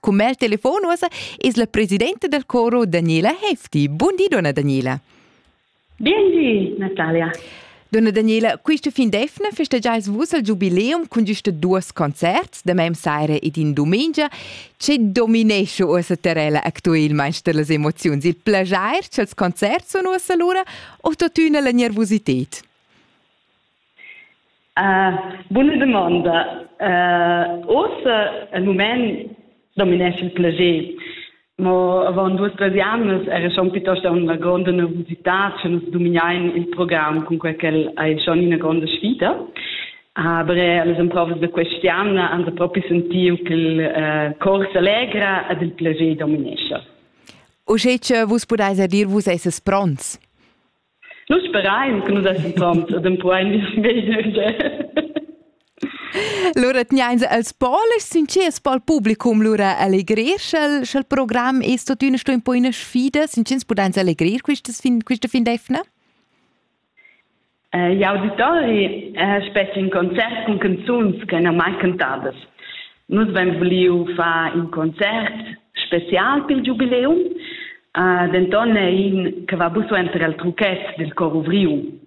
Cun mel telefon uossa es la presidenta del coro Daniela Hefti. Bun di, donna Daniela. Bien di, Natalia. Donna Daniela, questa fin d'efna festeggiais vus il giubileum cun giusta duos concerts, da mem saira ed in dumengia. Ce dominesce uossa terrella actuelmaing dellas emoziuns? Il plagier ch'els concerts sun uossa lura o tuttina la nervosited? Buna dumonda. Oz el mument dominesch il plager. Mo avon duas tres jamnas era schon piuttosto una gronda nervosità, che nus dominein il program con quel che hai schon una gronda sfida. Aber alle emprovas da questiana han proprio sentiu che il uh, cor s'allegra ed il plager dominesce. Uschè che vus pudeis dir, vus esses pronts? Nus sperain che nus essan pront dempuain meglio. Lura tgnains els polis sincers pel publicum lura allegrer sch'el sch'el program es tuottüna sto un po üna sfida, sincers pudains allegrir quistas fin quista fin d'eivna? I'auditori spetga in concert cun canzuns che n'han mai cantadas. Nus vein vuliu far in concert special pil giubileum, uh, denton è in che va buso enter el truchet del cor ovriu.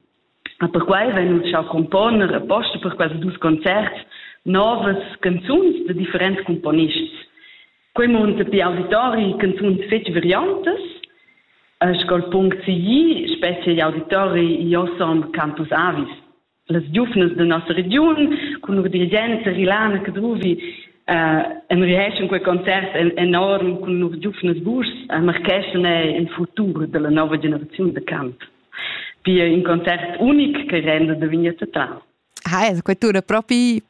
A perquai vein nus schau componer apposta per quels dus concerts novas canzuns de differents componists. Quei munta pi auditori canzuns fetg variantas, uh, scol punct sigli, specie gli auditori Iosom Campus Avis. las giuvnas da nossa regiun cun lur dirigents Rilana Cadruvi uh, en riheschen quei concert en, enorm cun lur giuvnas burs a marcheschan in futur della nova generaziun de camp. Pia in concert unic che renda de vignetta tra. Ha, quei tura propi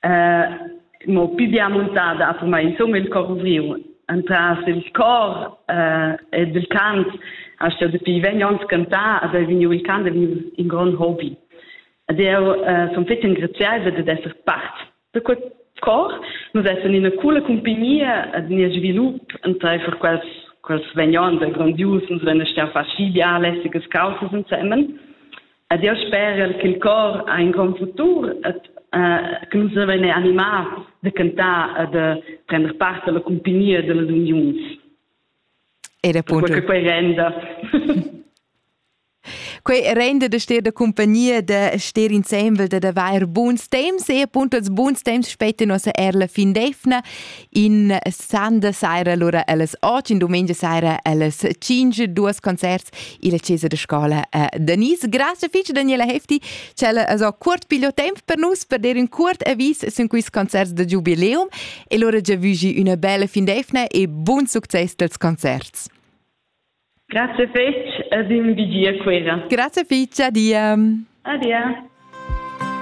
eh, mo più bien montada ha per me insomma il cor ovriu entras il cor eh, ed il cant ha sto dapi vegn ons cantar ad è vegniu il cant è vegniu in grond hobby ed io eh, son fetg engraziaivla ad esser part da quel cor nus essan ina cola compagnia ad nia svilup entreifer quels quels vegnon da grandius nus venes stian far schi biale sigas causas insemen Ed jeu sperel ch'il cor ha in grond futur et eh, che nus vein animar de cantar e de prender part alla compagnia dellas uniuns. Era appunto. Perché quei renda. Quei rende de stir de compagnia de stir insembel de de vair buns temps e appunto als buns temps spetten nossa erla fin defna in Sande sera, allora alles oggi, in domenica sera, alles 5, duas concerts, il Chiesa de Scola a Denise. Grazie fitch, Daniela Hefti, c'è so curt piglio tempo per nus, per dire un curt avis su questi concerts de Jubileum, e loro già vugi una bella fin d'efna e buon successo dels concerts. Grazie fitch, ad un vigia quera. Grazie fitch, adia. Adia.